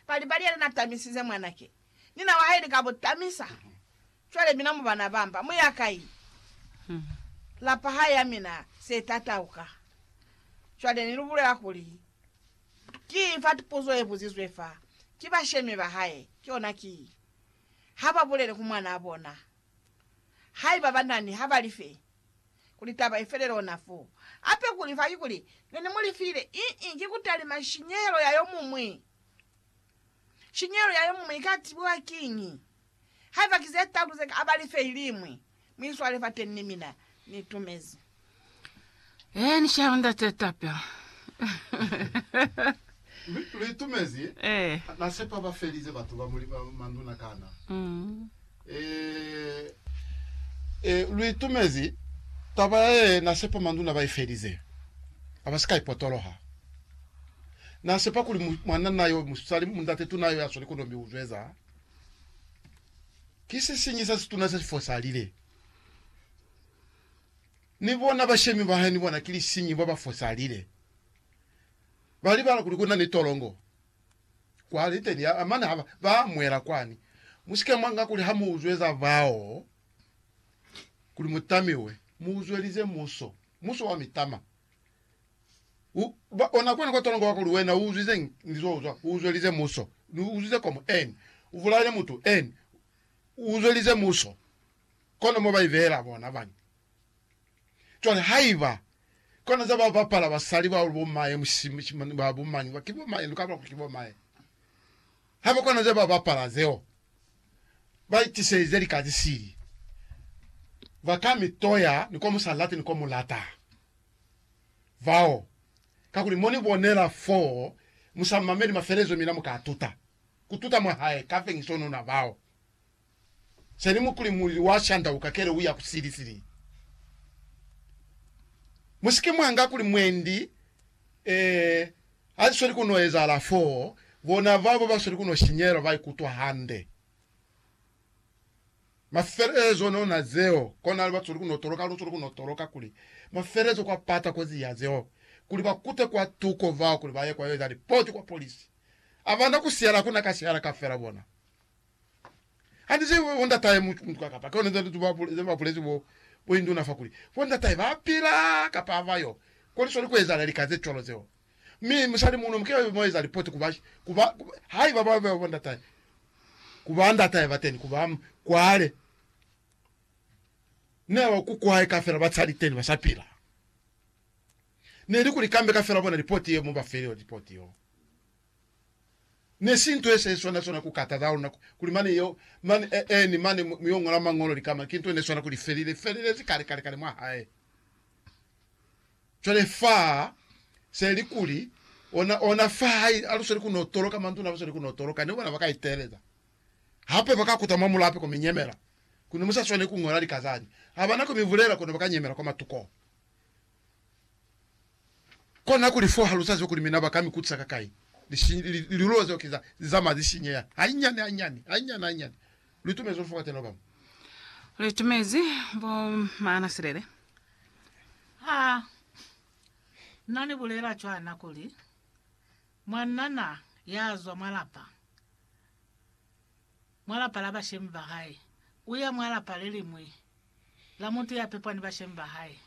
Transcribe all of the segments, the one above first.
Pali-pali yena na tamisize mwanake, nina wa hae ni ka bo tamisa. Cwale mina mu bana ba mba, mu ya kai? Lapa ha ya mina se tatauka. Cwale ni lu bulela kuli, Ki fa puzo ye buzizwe fa, ki bashemi ba hae, ki yona ki, Ha ba bulele ku mwanaa bona. Haiba ba nani, ha ba li fe. kuli taba ifele lona fo. Hape kuli fa ki kuli ne ni mu lifile, ii, ki kutalima shinyehelo ya yo mumwi. Shinyehelo ya yo mumwi ika tibiwa kiñi? Haiba ki ze talu ze ka aba life ilimwi, mu iswale fateñi ni mina. Ni tumezi. Ee, ni shaya Ndate Tapia. Lu itumezi? Ee. Na sepa ba felize batu ba muli manduna kana? Ii. Ee, ee, lu itumezi taba ya ye na sepa manduna ba i felize, a ba si ka i potoloha. Na sepa kuli mu, mwananna yo musali, mundate tuna yo ya sweli kono mi u zweza. Ki se siñi sa situna se si fosalile. Ni bona bashemi ba hae ni bona ki lisiñi, ba ba fosalile. Ba libala kuli ku na ni tolongo. kwa liteni ya mane ha ba, ba mwela kwani. Musike mwa nga kuli ha mu uzweza bao kuli mu tamiwe, mu uzwelize muso, muso wa mitama. U, ba, ona kwani kwa tolongo wa kuli wena u uzwize eng? Ni zo uzwa, u uzwelize muso, ni uzwize komu eng? U bulaile mutu eng? U uzwelize muso. Kono mo ba i beela bona bani? Cwale haiba kona za ba bapala basali ba bo mae musima ba bo mani ba ki bo mae luka lwa ki bo mae haba kona za ba bapala zeo ba itiseize lika ze sili ba ka mi toya ni ko musa lati ni ko mu lata vao kakuli mo ni bonela foo musa mameli mafelezo mina muka tuta kututa mwa hae ka fengiso nuna vao. Seli mukuli mulili wa shanda ukakele uya ku sili sili. Musike mwanga kuli mwendi e hazisweli kuno ezahala foo, bona babo basweli kuno shinyelwa baikutwa hande. Mafelelezo no na zeo, konali basweli kuno toloka, lusweli kuno toloka kuli mafelelezo kwa pata kozi ya zeo, kuli bakute kwa tuko bao kuli baye kwa yo eza lipoti kwa polisi. Abana ku sihala kuna ka sihala kafela bona. Hande se bo ndatahe mu mutuka kapa ke hone ze ba ze ba bulezi bo bo induna fa kuli bo ndatahe ba pila kapa ha ba yo. Ko li sweli ku ezahala lika ze cwalo zeo. Mi musali muno mu ke mo eza lipoti ku ba ku ba haiba ba ba bo ndatahe ku ba ndatahe ba teni ku ba kwale. Ne ba ku kwae ka fela ba sa li teni ba sa pila. Ne li kuli kambe ka fela bona lipoti ye mo ba fe yo lipoti yo. Ne si nto ye sa iswana swana ku kataza luna kuli mane yeo, mane, e, eeni, mane mu, mu yo ñola Mañolo lika mane, ki nto ne swana kuli felile, felilezi kale, kale, kale mwa hae. Cwale fa se li kuli, ona, ona fa hai, ha lu sweli ku no toloka, manduna ha lu sweli ku no toloka, ne bona ba ka iteeleza hape, ba ka kuta mwa mulape ko mi nyemela, kono mu sa swaneli ku ñola lika zani, ha ba na ko mi bulela, kono ba ka nyemela kwa matuko. Kona kuli fo ha lu sa zibe kuli mina ba ka mi kutisa ka kai. Lilulo zeo ki za li zamaya li sinyeha hainyani hainyani, hainyani hainyani. Lu itumezi lu fokatela ba bañwi? Lu itumezi bo maana silele? Ha na ni bulela cwana kuli mwanana ya zwa mwa lapa mwa lapa la bashemi ba hae, u ya mwa lapa le liñwi la mutu ya pepwa ni bashemi ba hae.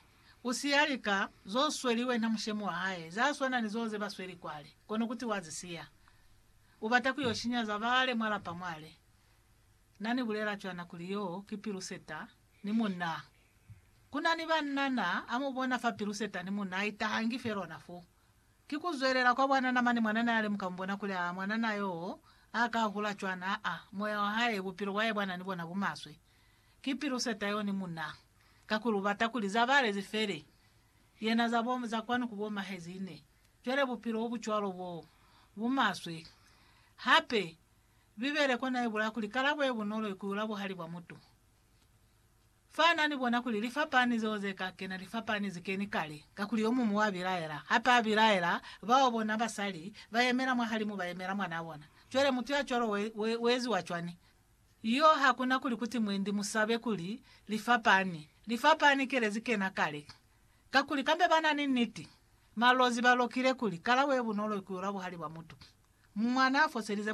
U siya lika zo sweli wena mushemi wa hae, za swana ni zo ze ba sweli kwale, kono kuti wa zi siya, u bata ku yo shinya za bale mwa lapa mwale. Na ni bulela cwana kuli yo ki piluseta ni munna. Ku na ni banna na a mu bona fa piluseta ni munna a itahangi fe lona fo. Ki kuzwelela kwa bwanana mane mwanana yale muka mubona kuli aa mwanana yoo a ka hula cwani aa moya wa hae bupilo bwae bwana ni bona bumaswe ki pilu seta yo ni muna kakuli ubata kuli za bale zi fele yena za bo za kwanu ku bo mahezine cwale bupilo obu cwalo bo bumaswe hape bibele kona ibulaya kuli kalabo ye bunolo iku ula buhali bwa mutu Fa na ni bona kuli li fapani zeo ze ka kena li fapani ze keni kale, kakuli yo mumu wa bilaela, hape a bilaela bao bona basali ba yemela mwahalimu ba yemela mwanaa bona. Cwale mutu ya cwalo we, we, we eziwa cwani? Yoo, ha ku na kuli kuti mwendi mu sabe kuli li fapani. Li fapani kele ze kena kale. Kakuli kambe ba na ni niti. Malozi ba lokile kuli, Kala we bunolo ku yula buhali bwa mutu. Mwanaa foselize mwanaa.